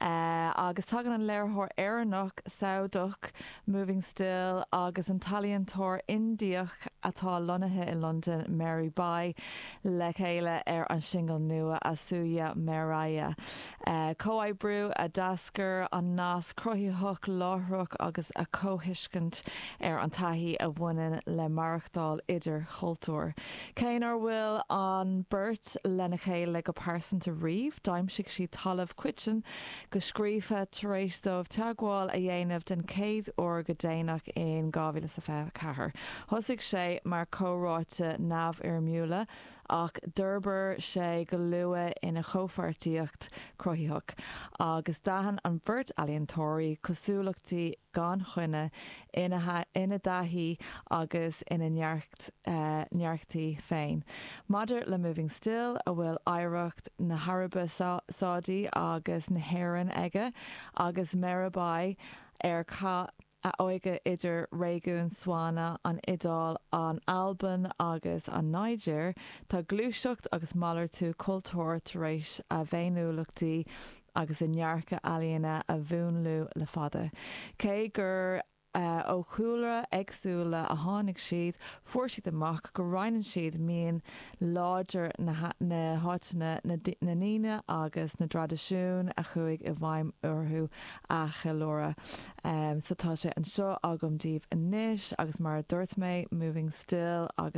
agus tagann an léiritheoir Éireannach, Sádach, Moving Still, agus an t-ealaíontóir Indiach atá lonnaithe i Londain, Meera Bai, le chéile ar an singil nua, Asoya Meraye. Comhoibriú a d'eascair as nasc cruthaitheach láithreach agus a gcomhthuiscint ar an taithí a bhaineann le maireachtáil idir chultúir. Cé nár bhual an bheirt lena chéile go pearsanta riamh, d'aimsigh siad talamh coiteann go sciobtha tar éis dóibh teagmháil a dhéanamh den chéad uair go déanach in 2024. Thosaigh sé mar chomhráite neamhfhoirmiúla ach d'fhorbair sé go luath ina chomhpháirtíocht chruthaitheach agus d'aithin an bheirt ealaíontóirí cosúlachtaí gan choinne ina dtaithí agus ina ndearcthaí féin. Maidir le Moving Still, a bhfuil oidhreacht na hAraibe Sádaí agus na hÉireann aige, agus Meera Bai, ar chaith a hóige idir réigiún SWANA, an Iodáil, an Albain agus an Nigéir, tá gluaiseacht agus malartú cultúir tar éis a bhféiniúlachtaí agus a ndearcadh ealaíne a mhúnlú le fada. Cé gur. ó chúlra éagsúla a tháinig siad, fuair siad amach go roinneann siad mian láidir na háiteanna, na ndaoine agus na dtraidisiún a chuaigh i bhfeidhm orthu a cheiliúradh. So tá sé anseo agam daoibh anois agus mar a dúirt mé, Moving Still agus.